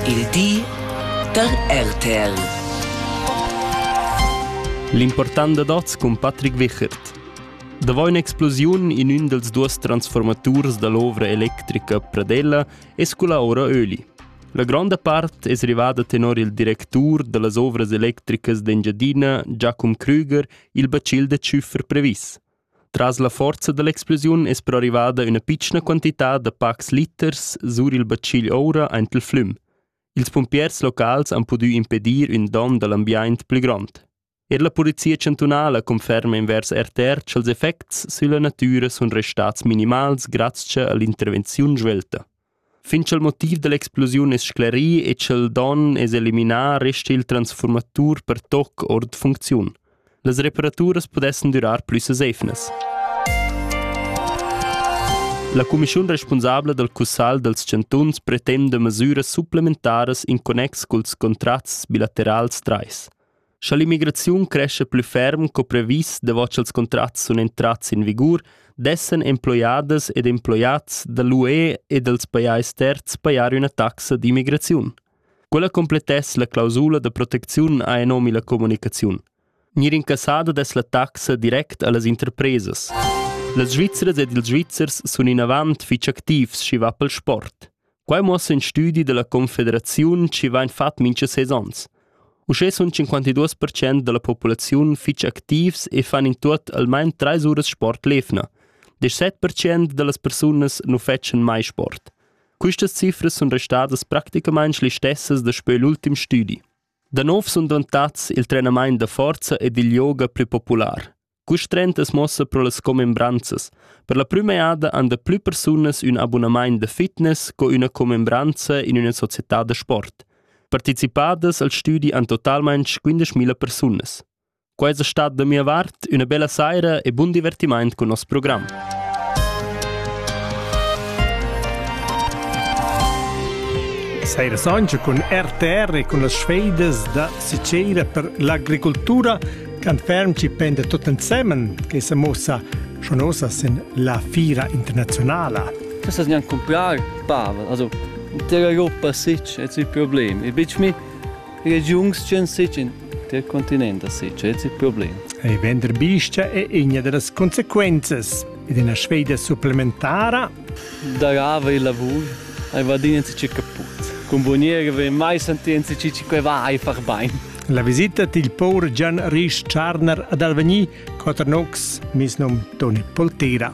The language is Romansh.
Il di da RTL. L'important dad oz cun Patrick Wichert. Davò un'explosiun in ün dels duos transformaturs da l'ovra electrica Pradella es cula ora Öli. La gronda part es rivada tenor il directur da las ovras electricas d'Engiadina, Giacum Krüger, il bacil da tschüffer previs. Tras la forza dall'explosiun es però rivada üna pitschna quantità da pacs liters sur il batschigl oura aint il flüm. Ils pumpiers locals han pudü impedir ün don da l'ambiaint plü grond. Er la Polizia chantunala conferma invers RTR cha'ls effects sülla natüra sun restats minimals grazcha a l'intervenziun svelta. Fin cha'l motiv da l'explosiun es sclerì e cha'l don es eliminà resta il transfurmatur per toc our da funcziun. Las reparaturas pudessan durar plü sesefnas. La cumischiun respunsabla dal Cussagl dals chantuns pretenda masüras supplementaras in connex culs contrats bilaterals trais. Scha l'immigraziun crescha plü ferm co previs davot cha'ls contrats sun entrats in vigur, dessan emploiadas ed emploiats da l'UE e dals pajais terzs pajar üna taxa d'immigraziun. Quella complettess la clausula da protecziun ha nomi la comunicaziun. Gnir incassada dess la taxa direct a las interpresas. Las Svizzras ed ils Svizzers sun inavant fich activs, schi va pel sport. Quai muossa in studi dalla Confederaziun chi vain fat mincha seis ons. Uschè sun 52% da la populaziun fich activs e fan in tuot almain trais uras sport l'efna. 17% da las persunas nu fetschan mai sport. Quistas cifras sun restadas practicamaing le stessas daspö l'ultim stüdi. Da nov sun dentats il trenamaint da forza ed il yoga plü popular. Custrentas mossa pro las commembranzas. Per la prüma jada han da plü persunas ün abunamaint da fitness co üna commembranza in üna società da sport. Partecipadas al stüdi han totalmaing 15.000 persunas. Quai es stat da mia vart üna bella saira e bun divertimaint cun nos program. Saira Sancha cun RTR e cun las sfeidas da Sicera per l'agricoltura Quant ferm ci penda tut ensemen che se mussa schon ossa sin la fira internazionala. Questa gnanc comprar pava, also der Europa sich et si problem. E bitch mi regions gen sich in der continent sich et si problem. E vender biscia è igna delle conseguenze ed una sfida supplementara. Darava il lavoro, ai vadini ci caput. Con buoniere ve mai sentienzi ci ci que va ai far bain. La visita dil pour Gian Risch Tscharner ad Alvegni, Quaternox, mis nom Toni Poltera.